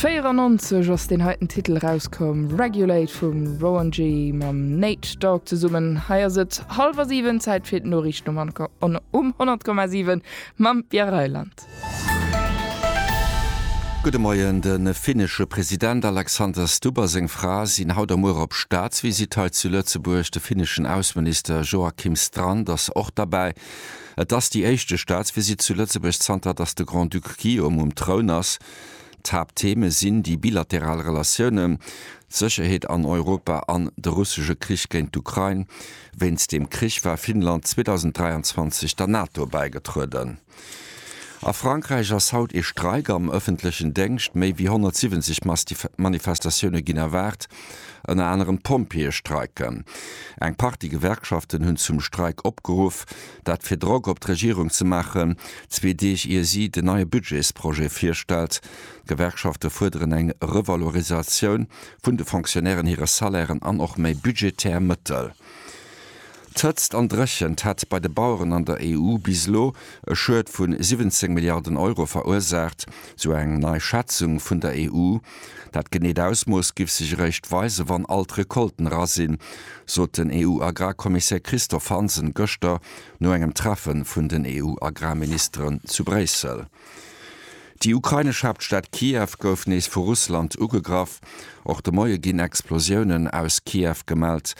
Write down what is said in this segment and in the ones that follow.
94 ass deen heiten Titel erauskomm, Regulate vum Rowan G mam Nate Dogg zesummen. Hei ass et hallwer 7, Zäit fir d'Noriichten um 100,7 mam Pierre Reyland. Gudde Moien, De finnesche President Alexander Stubb a seng Fra sinn haut a muer op Staatsvisitt hei zu Lëtzebuerg. De finneschen Ausseminister Joakim Strand ass och derbäi. Et ass déi éischte Staatsvisitt zu Lëtzebuerg zanter datt de Grand-Duc Guillaume um Troun ass. D'Haapttheme sinn déi bilateral Relatiounen, d'Sécherheet an Europa an de russesche Krich géint d'Ukrain. Wéinst deem Krich war Finnland 2023 der NATO bäigetrueden. A Frankräich ass haut ee Streik am ëffentlechen Déngscht. Méi wéi 170 Manifestatioune ginn erwaart. Ënner anerem d'Pompjeeë streiken. Eng Partie Gewerkschaften hunn zum Streik opgeruff, dat fir Drock op d'Regierung ze maachen, zwee Deeg ier si den neie Budgetsprojet virstellt. D'Gewerkschafte fuerderen eng Revalorisatioun vun de Fonctionnairen hire Salairen an och méi budgetär Mëttel. D'Hëtzt an Dréchent hätt bei de Baueren an der EU bis elo e Schued vu 17 Milliarden Euro verursaacht, sou eng nei Schätzung vun der EU. Dat geneet Ausmooss giff sech eréischt weisen, wann all d'Recolten era sinn, sot den EU-Agrarkommissär Christophe Hansen gëschter no engem Treffe vun den EU-Agrarministeren zu Bréissel. Déi ukrainesch Haaptstad Kiew gouf nees vu Russland ugegraff. Och de Moie ginn Explosiounen aus Kiew gemellt.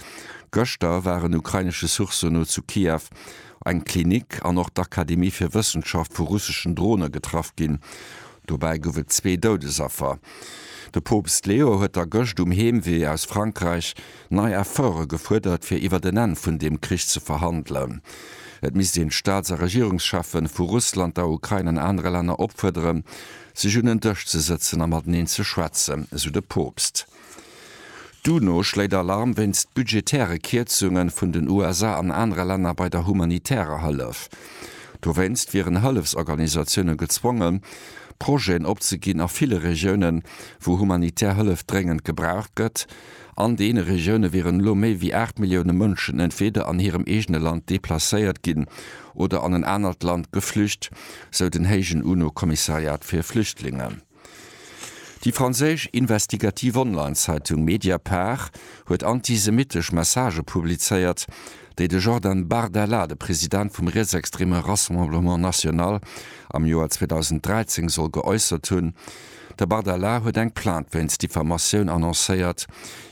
Gëschter waren ukrainesche Sourcen no zu Kiew eng Klinik an och d'Akademie fir Wëssenschaft vu russeschen Drone getraff ginn. Dobäi gouf et zwee Doudesaffer. De Poopst Leo huet da gëscht um Heemwee aus Frankräich Nei Efforte gefuerdert, fir iwwert en Enn vun deem Krich ze verhandelen. Et misst een d'Staats a Regierungscheffe vu Russland, der Ukrain an anere Länner opfuerderen, sech un en Dësch ze sëtzen a mateneen ze schwätzen, esou de Poopst. D'UNO schléit Alarm wéinst budgetäre Kierzunge vun den USA an anere Länner bei der humanitärer Hëllef. Dowéinst wieren Hëllefsorganisatioune gezwongen, Projeten opzeginn a ville Regiounen, wou humanitär Hëllef dréngend gebraucht gëtt, An deene Regioune wieren elo méi wéi 8 Millioune Mënschen entweeder an hirem eegene Land deplacéiert ginn oder an en anert Land geflücht, sou den héijen UNO-Kommissariat fir Flüchtlingen. Déi franséisch investigativ Online-Zeitung Mediapart huet antisemittesch Messagë publizéiert, déi de Jordan Bardella, de President vum rietsextreme Rassemblement National, am Joer 2013 soll geäussert hunn, De Bardella huet eng Plainte wéinst Diffamatioun annoncéiert.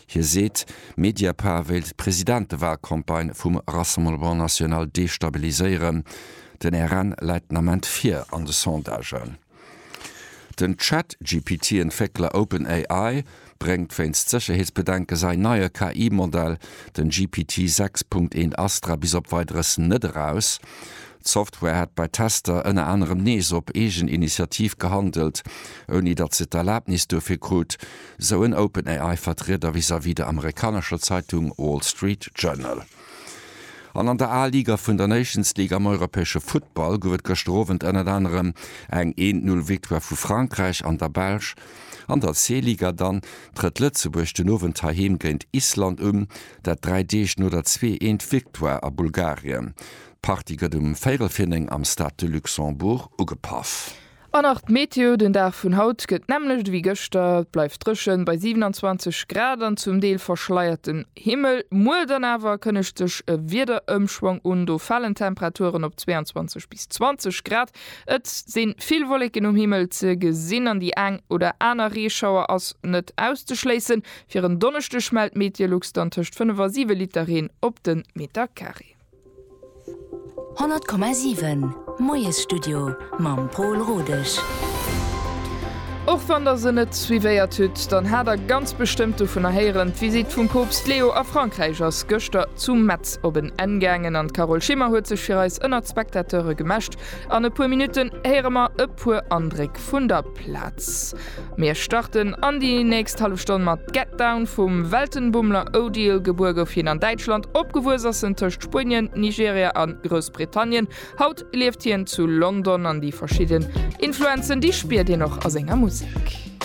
Hie seet, Mediapart wéilt d'Presidentewahlcampagne vum Rassemblement National destabiliséieren. Den RN läit den Ament vir an de Sondagen. Den Chat-GPT-Entwéckler OpenAI bréngt wéinst Sécherheetsbedenke säin neie KI-Modell, den GPT-6.1 Astra, bis op Weideres net eraus. D'Software hätt bei Tester ënner anerem nees op eegen Initiativ gehandelt, ouni datt se d'Erlabnis duerfir krut, sou en OpenAI-Vertrieder vis-à-vis der amerikanescher Zeitung Wall Street Journal. An an der A-Liga vun der Nations League am europäesche Futtball gouf et gëschter Owend ënnert anerem eng Eent-Null-Victoire vu Frankräich an der Belsch. An der C-Liga dann trëtt Lëtzebuerg den Owend heiheem géint Island un, dat 3 Deeg no der Zwee eent Victoire a Bulgarien. D'Partie gëtt um véirel vir 9 am Stade de Luxembourg ugepaff. An nach d'Meteo, Den Dag vun haut gëtt d'nämmlecht ewéi gëschter, et bleift dréchen bei 27 Grad an zum Deel verschleierten Himmel. Muer dann awer kënnegt sech e Wiederëmschwong un, do falen d'Temperaturen op 22 bis 20 Grad. Et sin vill Wolleken um Himmel ze gesin an déi eng oder aner Reeschauer ass net auszeschléissen. Fir en Donneschdeg mellt Meteolux dann tëscht 5 a 7 Liter Reen op de Metercarré. 100,7 Moiesstudio mam Pol Rodesch. Och wann der se net suivéiert hutt, dann hat der ganz bestëmmt dovunner héieren, D'Visitt vum Poopst Leo a Frankräich ass gëschter zu Metz Fest op en Enn gaangen an d'Carole Schimmer huet sech fir eis ënnert d'Spectateure gemescht. An e puer Minutten héiere mer e puer Andréck vun der Plaz. Mir starten an déi nächst hallef Stonn mat Get Down vum Weltenbummler Odile. Gebuer gouf hien an Däitschland, opgewuess ass en tëscht Spuenien, Nigeria a Groussbritannien. Haut lieft hien zu London an déi verschidden Influenzen, déi spiert een och a senger Musek.